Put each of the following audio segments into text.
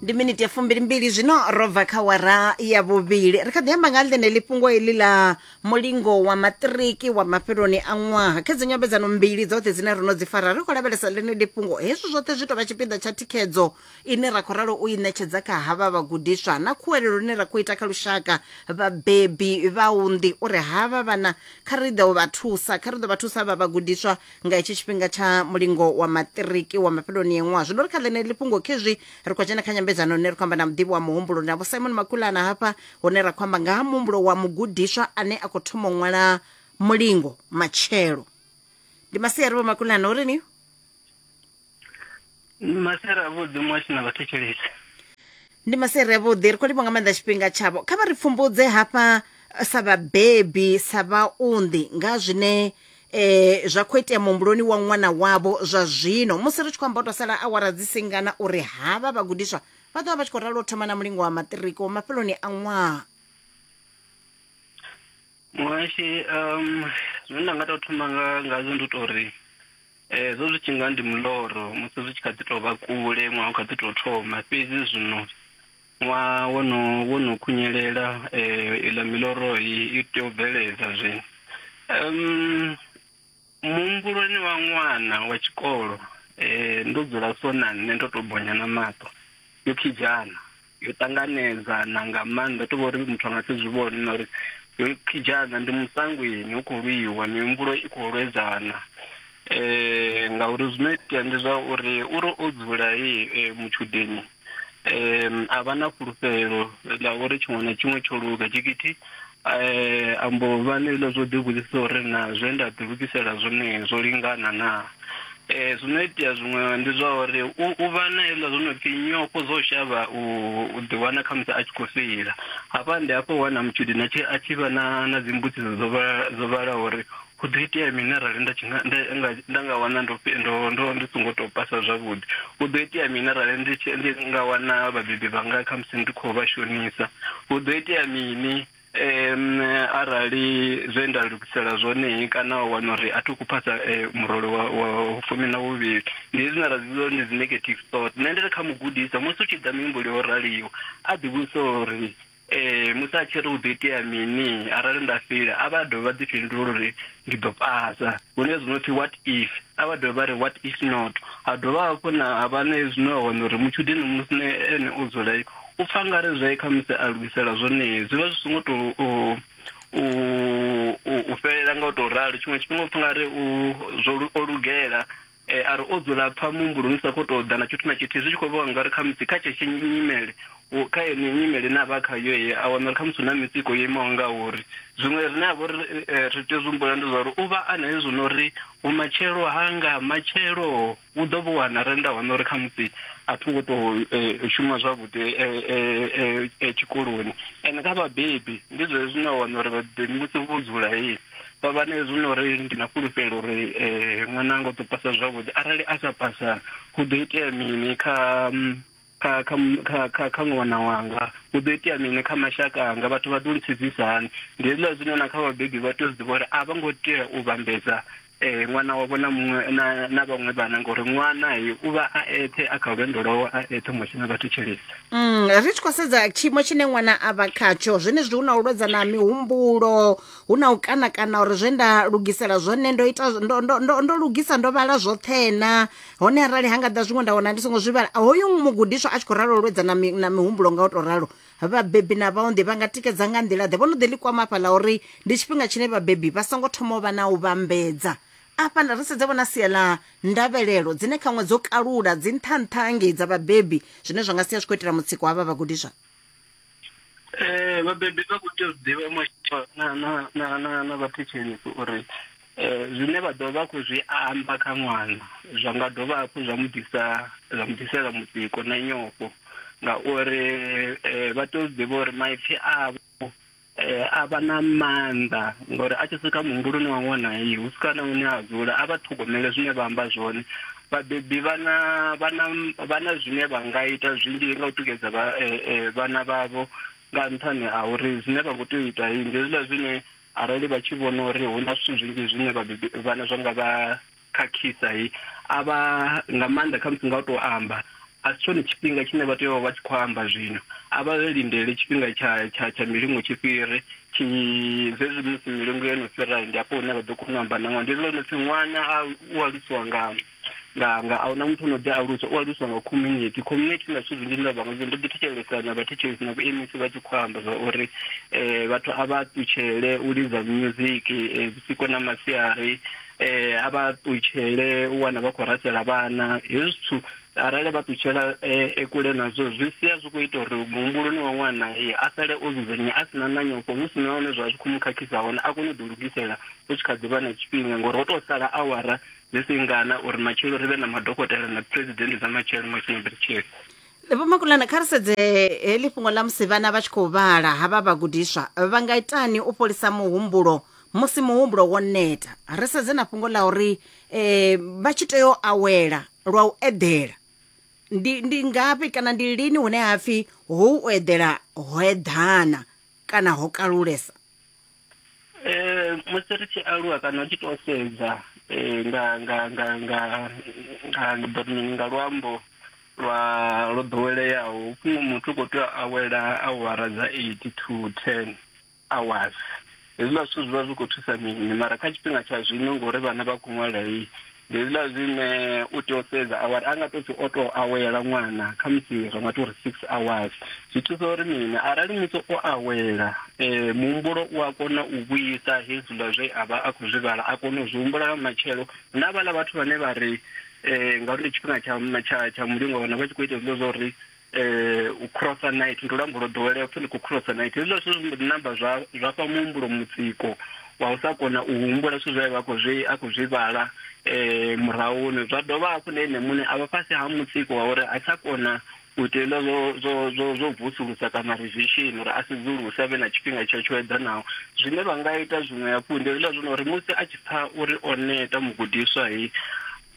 ndi miniti ya fumbilimbili zwino ro bva kha wara ya vhuvhili ri kha ḓi amba nga ḽeneḽi fhungo heḽi ḽa mulingo wa maṱiriki wa mafheloni a ṅwaha kha dzi nyambedzano mbili dzoṱhe dzine ro no dzi fara ri khou lavhelesa ḽeneḽi fhungo hezwi zwoṱhe zwi tovha tshipiḓa tsha thikhedzo ine ra khou ralo u i ṋetshedza kha havha vhagudiswa na khuwelelo ine ra khou ita kha lushaka vhabebi vhaunḓi uri havha vhana kha ri ḓe u vha thusa kha ri ḓo vha thusa vha vhagudiswa nga hetshi tshifhinga tsha mulingo wa maṱiriki wa mafheloni yeṅwaha zwino ri kha ḽene ḽifhungo khezwi ri khou dzhena kha nyambedzano hune ri khou amba na muḓivhi wa muhumbulo na vho simon makulana hafha hune ra khou amba nga ha muhumbulo wa mugudiswa ane a khou thoma u ṅwala mulingo matshelo ndi masiari vho makulana uri ni masere a vhuḓi mwashu na vhathetshelesi ndi masere a vhuḓi ri khou livha nga maanḓa tshifhinga tshavho kha vha ri pfumbudze hafha eh, sa vhabebi sa vhaunḓi nga zwine eh zwa khou itea muhumbuloni wa ṅwana wavho zwa zwino musi ri tshi khou amba u tou sala awara dzi singana uri havha vhagudiswa vha ḓovha vha tshi khou ralo u thoma na mulingo wa maṱiriki wa mafheloni a ṅwaha Muhashi um zwine nda nga tou thoma nga ngazwo ndi u tou ri eh, zwo zwi tshi nga ndi muloro musi zwi tshi kha ḓi tou vha kule ṅwaha u kha ḓi tou thoma fhedzi zwino ṅwaha wo no wo no khunyelela eh, iḽa miloro i i tea u bveledza zwino um muhumbuloni wa ṅwana wa tshikolo eh, ndo dzula so na nṋe ndo to bonya na maṱo yo khijana yo ṱanganedza na nga maanḓa to vha uri muthu a nga si zwi vhone na uri yo khijana ndi musangweni hu khou lwiwa mihumbulo i khou lwedzana eh ngauri zwino itea ndi zwa uri uri o dzula ye eh, mutshudeni um a vha na fhulufhelo ḽa uri tshiṅwe na tshiṅwe tsho luga tshikiti um ambo vha neilo zwo ḓivhudzisa uri na zwe nda ḓilugisela zwone zwo lingana na um zwino itea zwiṅwe ndi zwa uri u vha na iḽa zwo no pfhi nyofho zwo shavha u ḓiwana khamusi a tshi khou feila hafha ndi hafho wana mutshudeni a tshi vha na na dzimbudziso dzo vhalaho uri Hu ḓo itea mini arali nda tshi nga nda nga nda nga wana ndo fhe- ndo ndo ndi songo tou pasa zwavhuḓi hu ḓo itea mini arali ndi tshi ndi nga wana vhabebi vhanga kha musi ndi khou vha shonisa hu ḓo itea mini em arali zwe nda lugisela zwone kana wa wana uri a thi khou phasa eh, murole wa wa fumi na vhuvhili ndi zwine ra zwi vhidza uri ndi dzi negative thought nṋe ndi ri kha mugudiswa musi u tshi ḓa mihumbuloni yo raliho a ḓivhudze uri Ee, musi a tshi ri hu ḓo itea mini arali nda fhila, a vha dovhe vha ḓi fhindula uri ndi ḓo pasa. Hu na hezwi no pfi what if, a vha dovhe vha ri what if not. Ha dovha hafhu na ha vha na hezwi no wana uri mutshudeni musi na ene o dzula u pfa nga ri zwe khamusi a lugisela zwone zwi vha zwi songo tou u u u u fhelela nga u tou ralo. Tshiṅwe tshifhinga u pfa nga ri u zwo lu- o lugela. E, a ri o dzula pfa muhumbuloni u sa khou tou ḓa na tshithu na tshithihi, zwi tshi khou vhonga uri khamusi kha tshetshe nyimele, u, kha yeneyo nyimele ine a vha khayo, e, a wana uri khamusi hu na mitsiko yo imaho ngauri. Zwiṅwe rine ha vha uri e, ri tea u zwi humbula ndi zwa uri u vha a na hezwi no ri, Vhumatshelo hanga, matshelo! U ḓo vhu wana arali nda wana uri khamusi a tho ngo tou e, shuma zwavhuḓi e, e, e, e, tshikoloni. Ende kha vhabebi ndi zwezwi, ni a wana uri vhabebi musi vho dzula, e, Baba, na hezwi no ri ndi na fhulufhelo uri eh, ṅwananga u ḓo pasa zwavhuḓi, arali a sa pasa hu ḓo itea mini kha mm, kha kha mm, kha kha, kha ṅwana wanga? Hu ḓo itea mini kha mashaka anga? Vhathu vha ḓo lisedzisa hani? Ndi hezwiḽa zwine na kha vhabebi vha tea u zwi ḓivha uri a vha ngo tea u vhambedza eh, ṅwana wavho na muṅwe na, na vhaṅwe vhana ngori ṅwana he u vha a eṱhe a kha lwendo lwawe a eṱhe huṅwe tshine vha thetshelesa. Mm, ri tshi khou sedza tshiimo tshine ṅwana a vha khatsho zwenezwi hu na u lwedzana ha mihumbulo hu na u kana kana uri zwe nda lugisela zwone ndo ita ndo, ndo, ndo, ndo lugisa ndo vhala zwoṱhe na hone arali ha nga ḓa zwiṅwe nda wana ndi songo zwi vhala hoyu mugudiswa a tshi khou ralo lwedza na, mi, na mihumbulo nga u tou ralo vhabebi na vhaonḓi vha nga tikedza nga nḓila ḓe vho no ḓi ḽi kwama afha ḽa uri ndi tshifhinga tshine vhabebi vha songo thoma u vha na u vhambedza afha ri sedze vhona sia ḽa ndavhelelo dzine khaṅwe dzo kalula dzi nṱha nṱha ngei dza vhabebi zwine zwa nga sia zwi khou itela mutsiko havha vhagudiswa Eh vhabebi vha kho tea u ḓivha mashudu na na na na na vhathetshelesi uri eh zwine vha ḓo vha kho zwi amba kha ṅwana zwa nga dovha hafhu zwa mu ḓisa zwa mu ḓisela mutsiko na nyofho ngauri eh vha tea u ḓivha uri maipfi avho eh a vha na maanḓa ngori a tshi swika muhumbuloni wa ṅwana heyi hu swika na hune a dzula a vha ṱhogomele zwine vha amba zwone Vhabebi vha na vha na vha na zwine vha nga ita zwinzhi nga u tikedza vha eh, eh, vhana vhavho nga nṱhani ha uri zwine vha khou tea u ita ndi zwiḽa zwine arali vha tshi vhona uri hu na zwithu zwinzhi zwine vhabebi vhana zwa nga vha khakhisa a vha nga maanḓa khamusi nga u tou amba a si tshone tshifhinga tshine vha tea u vha vha tshi khou amba zwino a vha lindele tshifhinga tsha tsha tsha milingo tshi fhire tshi zwezwi musi milingo yo no fhira ndi afho hune vha ḓo kona u amba na ṅwana ndi ḽone pfhi ṅwana a u alusiwa nga nga nga a huna muthu ono ḓi aluswa u aluswa nga community community na zwithu zwinzhi nda vha nga ndo ḓi thetshelesa na vhathetshelesi na vhuemisi vha tshi khou amba zwa uri um vhathu a vha ṱutshele u lidza music vhusiku na masiari eh a vha ṱutshele u wana vha khou rasela vhana hezwi zwithu arali vha ṱutshela eh, e kule nazwo zwi sia zwi khou ita uri muhumbuloni wa ṅwana eh, a sale o dzudzanyea a si na na nyofho hu si na hone zwa zwi khou mu khakhisa hone a kone u ḓi lugisela hu tshi kha ḓi vha na tshifhinga ngori ho tou sala awara dzi si ngana uri matshelo ri vhe na madokotela na president dza matshelo matshelo matshelo vho makulana kha ri sedze heḽi fhungo ḽa musi vhana vha tshi khou vhala havha vhagudiswa vha nga itani u fholisa muhumbulo musi muhumbulo wo neta ri sedze na fhungo ḽa uri um vha tshi tea u awela lwa u eḓela ndi ndi ngafhi kana ndi lini hune ha pfhi ho u eḓela ho eḓana kana ho kalulesa Eh, musi ri tshi aluwa kana u tshi tou sedza eh, nga nga nga nga nga ndi ḓo ri mini nga luambo lwa lwo ḓoweleaho fhungo muthu u khou tea u awela awara dza eight to ten hours hezwiḽa zwithu zwi vha zwi khou thusa mini mara kha tshifhinga tsha zwino ngori vhana vha khou ṅwala hei ndi hezwiḽa zwine u tea u sedza awara a nga to pfhi o to awela ṅwana kha musi ri nga to ri six hours zwi thusa uri mini arali musi o awela um muhumbulo u a kona u vhuyisa hezwiḽa zwe a vha a khou zwi vhala a kona u zwi humbula nga matshelo na vhaḽa vhathu vhane vha ri um ngauri ndi tshifhinga tsha tsha tsha mulingo wana vha tshi khou ita hezwiḽa zwa uri eh, u crossa night ndi luambo lwo ḓowelea upfi ni khou crossa night hezwiḽa zwithu zwi mbo ḓi namba zwa zwa fha muhumbulo mutsiko wa u sa kona u humbula zwithu zwe vha khou zwi a khou zwi vhala um murahuni zwa dovha hafhu na ene muṋe a vha fhasi ha mutsiko wa uri a tsha kona u ita hezwiḽa zwo zwo zwo zwo vusulusa kana revision uri a sedzuluse a vhe na tshifhinga tsho tsho eḓanaho zwine vha nga ita zwiṅwe hafhu ndi hezwiḽa zwino uri musi a tshi pfha uri o neta mugudiswa he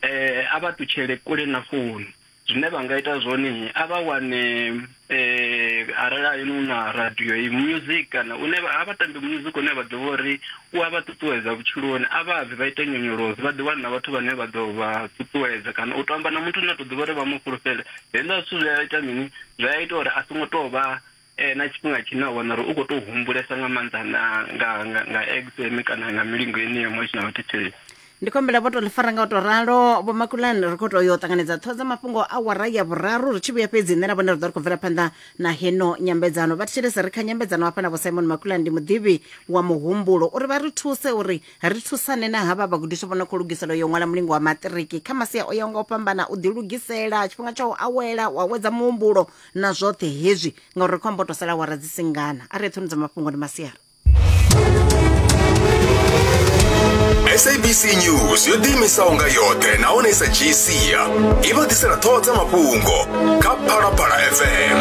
um a vha tutshele kule na founu zwine vha nga ita zwone a vha wane eh arali a yino na radio i music kana une vha vha tambe music une vha ḓivha uri u a vha ṱuṱuwedza vhutshiloni a vha bvi vha ite nyonyoloso vha ḓi wana vhathu vhane vha ḓo vha ṱuṱuwedza kana u tamba na muthu na to ḓivha uri vha mu fhulufhele henda zwithu zwi a ita mini zwi a ita uri a songo to vha eh, na tshifhinga tshine a wana uri u khou tou humbulesa nga maanḓa na nga nga nga exam kana nga milingo ine ya ṅwalisi na vhathetshelesi ndi khou humbela vho tou ḽi fara nga u tou ralo vho makulani ri khou tou yo ṱanganedza ṱhoho dza mafhungo a wara ya vhuraru ri tshi vhuya fhedzi nṋe na vhone ri ḓo ri khou bvela phanḓa na heno nyambedzano vha thetshelese ri kha nyambedzano hafha na vho simon makulani ndi muḓivhi wa muhumbulo uri vha ri thuse uri ri thusane na havha vhagudiswa vho no khou lugisela yo ṅwala mulingo wa maṱiriki kha masia o yaho nga u fhambana u ḓilugisela tshifhinga tsha u awela u awedza muhumbulo na zwoṱhe hezwi ngauri ri khou amba u to sala wara dzi singana a ri eṱhoni dza mafhungo ndi masiara sabc news yo ḓiimisaho nga yoṱhe nahone sa dzhii sia i vha ḓisela ṱhoho dza mafhungo kha phalaphala fm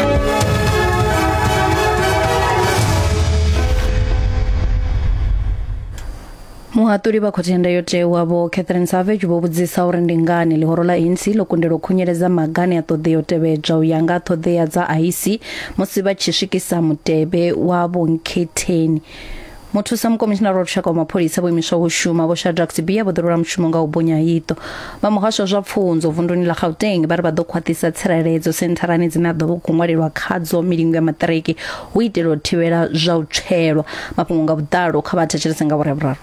muhaṱuli vha khothe ya ndayotewa vho catherine savage vho vhudzisa uri ndi ngani ḽihoro ḽa anc ḽo kundelwa u khunyeledza magane a ṱoḓea u tevhedzwa u ya nga ṱhoḓea dza ic musi vha tshi swikisa mutevhe wa vhonkhetheni muthusa mukomishinara wa lushaka wa mapholisa vho imiswa u shuma vho shadrack sibia vho ḓirula mushumo nga u bonya iṱo vha muhasho wa zwa pfunzo vunduni ḽa gauteng vha ri vha ḓo khwaṱhisa tsireledzo sentharani dzine a ḓo vha khou ṅwalelwa khadzo milingo ya maṱiriki hu itela u thivhela zwa u tswelwa mafhungo nga vhuḓalo kha vha thetshelese nga vhurerure.